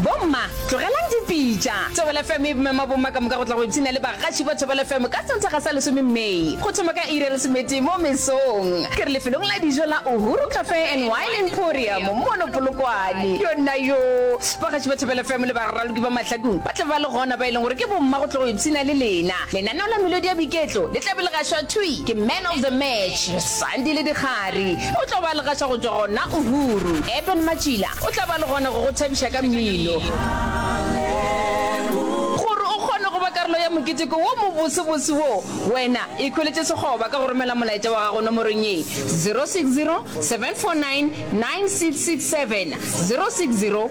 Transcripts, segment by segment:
Bomma, tlogelang dipitša. Thobela FM e mema bomma ka moka go tla go ipshina le bagaši ba Thobela FM ka Sontaga sa lesome May, go thoma ka iri ya lesometee mo mesong. Ke re lefelong la dijo la Uhuru Cafe and Wine Emporium mono Polokwane. Yonnayoo! Bagaši ba Thobela FM le baraloki ba mahlakong ba tla ba le gona, ba e leng gore ke bomma go tla go ipshina le lena. Lenaneo la melodi ya boiketlo le tla be le gašwa thwi ke Man of the Match. Sandi le Dikgari o tlo ba legaša go tšwa gona Uhuru. Eben Matšila o tla ba le gona go go thabiša ka mmino. Gore o kgone go ba karolo ya moketeko wo mobosebose wo, wena ikhweletše sekgoba ka go romela molaetša wa gago nomorong ye, 060 749 9667, 060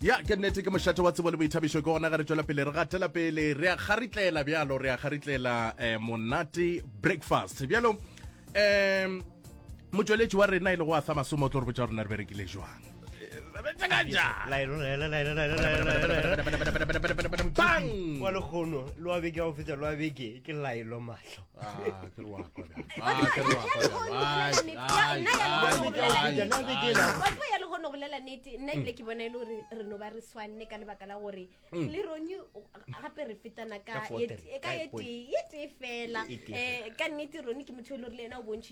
ya ke nnete ke mošate wa tsebo le boithabišo ke gona ga re tswela pele re gatela pele re a kgaritlela bjalo re a kgaritlela eh, monate breakfast bjalo um motsweletši wa rena e le go a sa masomo o tlo re botsa rona re berekile jwang bang wa lekgono loa beke ao fetsa loa beke ke laelo mahlo Ah, ke re wa kwa bjang. Ah, ke re wa kwa bjang. Ai, ai, ai, ai, Nna le ke ai. la- wa tseba ya le gone go lela nete nna ebile ke bona e le gore re no ba re swanne ka lebaka la gore le rone o- gape re fetana ka Ka four ye- three, ka ka ye point. tee ye tee fela E- e tee um ka nnete rone ke motho e le gore le ena o bontšhi